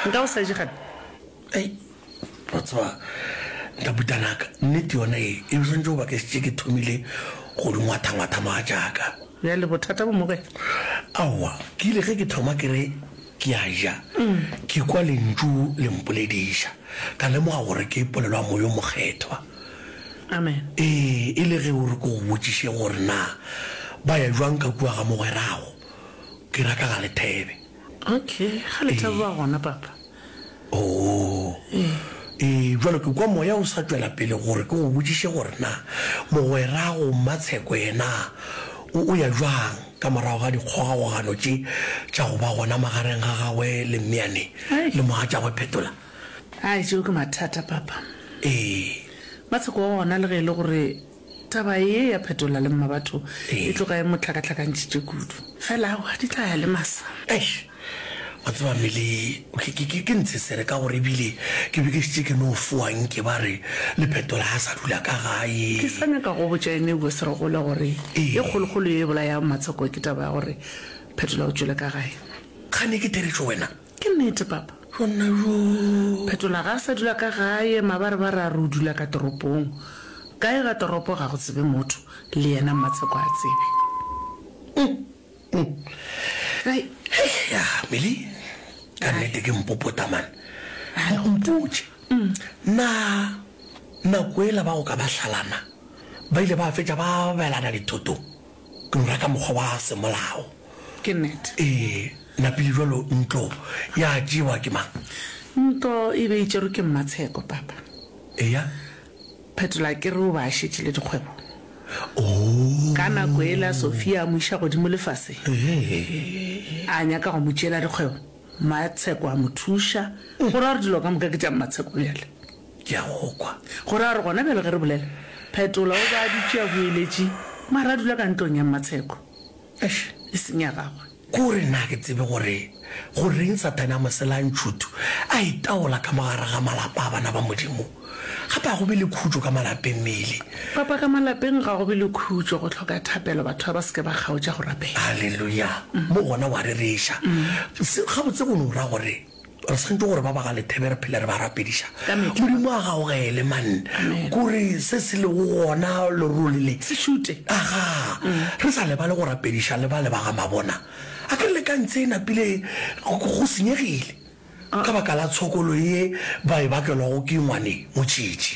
nka o sa je gape ei batswa ntabutanaka nnete yona e e swantse go baka setse ke thomile go di ngwathangwatha maa jaaka ya le bothata bo mogwena aowa ke ile ge ke thoma ke re ke a ja ke kwa lentšu le mpolediša ka lemoga gore ke polelo ya moyo mokgethwa amen ee e le ge o re ko go botšiše gore na ba ya jwang ka kua ga mogwerago Ke rata ga le thebe. Okay, ga le thebe ba gona, Papa. Oh. E, jwalo ke kwa moya o sa tšwela pele gore ke go botšiše gore na mogwerago Mmatsheko yena o, o ya jwang ka morago ga dikgogagogano tše tša go ba gona magareng ga gagwe le Mmeane Ai. le mogatšagwe Phetola. Ai, tšeo ke mathata, Papa. E. Mmatsheko wa gona le ge e le gore Taba ye ya phetola le mmabatho e tloga e mo hlakahlakantšhitše kudu. Fela aowa, di tla ya le masa. Eish, wa tseba Milly, ke, ke, ke, ke ntshesere ka gore ebile ke be ke šetše ke no fowa nke ba re le phetola a sa dula ka gae. Ke sa nyaka go botša ene eupša se re gole gore e kgolokgolo ye e bolayago Matshoko ke taba ya gore phetola o tšwele ka gae. Kgane ke theretšo wena. Ke nnete, papa. Go nna bjoo. Phetola ga a sa dula ka gae, mabarebare a re o dula ka toropong. Kae ga toropo ga go tsebe motho, le yena Mmatsheko a tsebe. Hei, hei, ya, Milly, ka nnete ke mpopota, man. Mo mpotše, Na nako yela ba go ka ba hlalana ba ile ba fetša ba abelana dithotong? Lora ka mokgwa wa semolao. Ke nnete. Ee, napile jwalo ntlo ya tšewa ke mang? Ntlo e be e tšerwe ke Mmatsheko, papa. Eya. Phetola ke re o be a šetše le dikgwebo. Oo. Ka nako yela Sofia a mo iša godimo lefaseng. Ee. A nyaka go mo tšeela dikgwebo, Mmatsheko a mo thuša, go ra gore dilo ka moka ke tša Mmatsheko bjale. Ke a go kwa. Go raya gore gona bjale ge re bolela, Phetola o be a dutše a hueletše, mara a dula ka ntlong ya Mmatsheko. Eish, e seng ya gagwe. Ke gore nna ga ke tsebe gore goreng Sathane a mo sela ntšhuthu a itaola ka mo gare ga malapa a bana ba Modimo. Gape ga go be le khutšo ka malapeng, Milly. Papa, ka malapeng ga go be le khutšo. Go hloka thapelo, batho ga ba se ke ba kgaotša go rapela. Haleluya! Mo gona wa rereša. Se, gabotse go no ra gore Re swantšwe gore ba ba ga lethebe re phele re ba rapediša. Modimo a gaogele, man, kore se se lego gona lerole le. Se šute. Aga, re sa lebale go rapediša le bale ba ga Mabona. A ke re le ka ntse e napile go senyegile, ka baka la tshokolo ye ba e bakelwago ke ngwane motšitši.